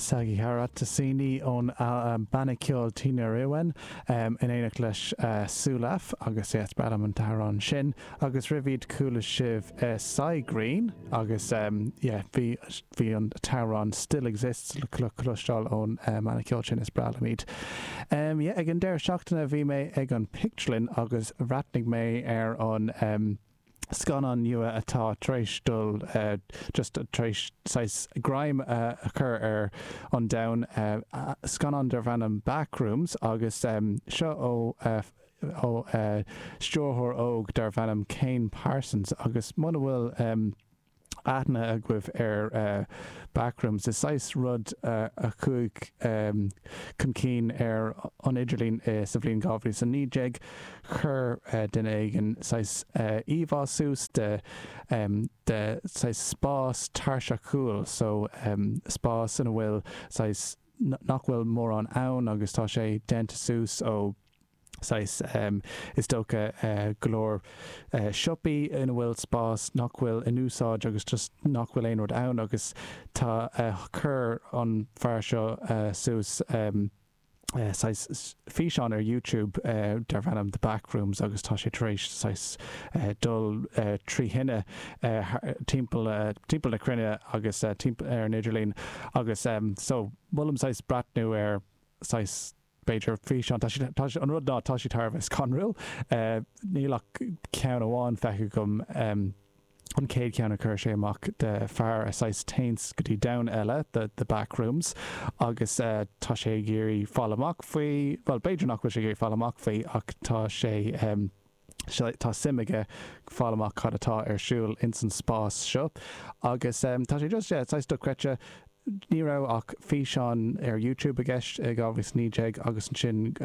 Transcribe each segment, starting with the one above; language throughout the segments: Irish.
Sagherat Assani ón mbanna ceoil Tinariwen in éineacht le Sulafa Elyas ar an amhrán sin agus roimh iad chuala sibh Cy Green agus bhí an t-amhrán Still Exists le cloisteáil ón mbanna ceoil sin So yeah ag an deireadh seachtaine. Bhí mé ag an bpictiúrlann agus bhreathnaigh mé ar an scannán nua atá tar éis dul just tar éis saghas greim a chur ar an domhan, scannán darb ainm Backrooms agus seo ó ó stiúrthóir óg darb ainm Kane Parsons agus muna bhfuil. aithne agaibh ar Backrooms. Is saghas rud a chuaigh chun cinn ar an idirlíon sa bhliain 2019. Chuir duine éigin saghas íomhá suas de saghas spás tairseachúil, so spás ina bhfuil saghas nach bhfuil mórán ann agus tá sé déanta suas ó, saghas, is dócha, go leor siopaí ina bhfuil spás nach bhfuil in úsáid agus just nach bhfuil aon rud ann agus tá chuir an fear seo suas saghas físeán ar YouTube darb ainm The Backrooms agus tá sé tar éis saghas dul trí thine timpeall timpeall na cruinne agus timpeall ar an idirlíon agus so molaim saghas breathnú ar saghas b'fhéidir, físeán. Tá siad, tá siad, an rud ná, tá siad thar a bheith scanrúil. Níl ach ceann amháin feicthe agam, an chéad cheann a chuir sé amach de fear a saghas téann go dtí domhan eile, the the backrooms, agus tá sé ag iarraidh fáil amach faoi, bhuel, b'fhéidir nach bhfuil sé ag iarraidh fáil amach faoi ach tá sé, seo, tá suim aige fáil amach cad atá ar siúl ins an spás seo agus tá sé just, yeah, saghas dochreidte. Ní raibh ach físeán ar YouTube i gceist i 2019 agus ansin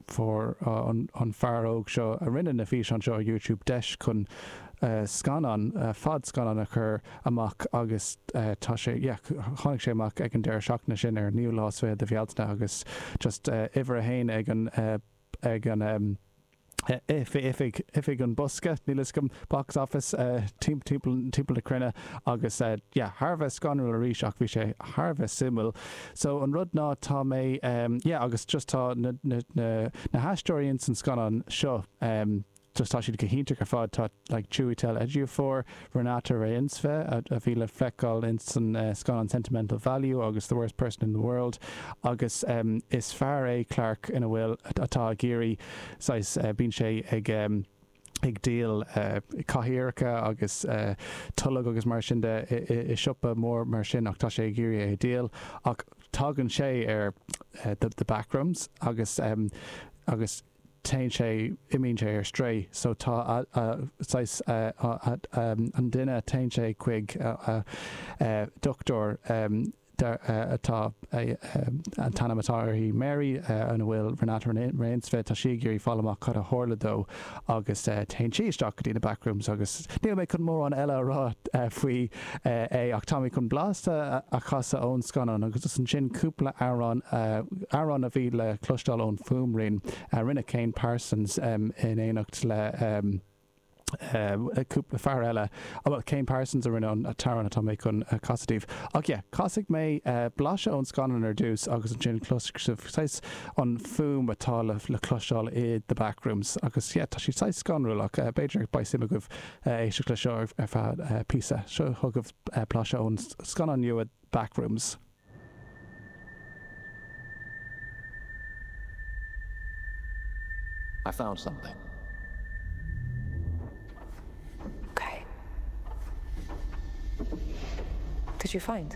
fuair an fear óg seo a rinne na físeáin seo ar YouTube deis chun scannán, fadscannán a chur amach agus tá sé, yeah, tháinig sé amach ag an deireadh seachtaine sin ar an 9ú lá is fiche de Bhealtaine agus just uimhir a haon ag an, ag an. oifig an bhosca, níl a fhios agam, box office, timpeall na cruinne agus yeah, thar a bheith scanrúil arís ach bhí sé thar a bheith suimiúil. So an rud ná tá mé yeah agus just tá na haisteoirí ins an scannán seo just tá siad go hiontach ar fad, tá. like Chiwetel Ejiofor, Renata Reinsve, a bhí le feiceáil ins an scannán Sentimental Value agus The Worst Person in the World agus is fear é Clarke ina bhfuil, atá ag iarraidh saghas, bíonn sé ag, ag díol cathaoireacha agus toilg agus mar sin de i siopa mór mar sin ach tá sé ag iarraidh é a dhíol ach tagann sé ar the backrooms agus, agus. téann sé, imíonn sé ar strae so tá a, a, saghas a, a, a, an duine, téann sé chuig a, a, a dhochtúir, dar, a, atá, a, an t-ainm atá uirthi Mary, ina bhfuil Renata Reinsve, tá sí ag iarraidh a fháil amach cad a tharla dó agus téann sí isteach go dtí na backrooms agus níl mé chun mórán eile a rá faoi. é ach tá mé chun blaiseadh a chasadh ón scannán agus ansin cúpla amhrán, amhráin a bhí le cloisteáil ón fuaimrian a rinne Kane Parsons in éineacht le cúpla fear eile, bhuel Kane Parsons a rinne an t-amhrán atá mé chun casadh daoibh. Ach yeah, casfaidh mé blaiseadh ón scannán ar dtús agus ansin cloisfidh sibh saghas an fuaim atá le cloisteáil i The Backrooms agus yeah, tá sé saghas scanrúil ach b'fhéidir beidh suim agaibh. éisteacht le seo ar feadh píosa. Seo chugaibh blaiseadh ón scannán nua Backrooms. I found something. Okay. Did you find?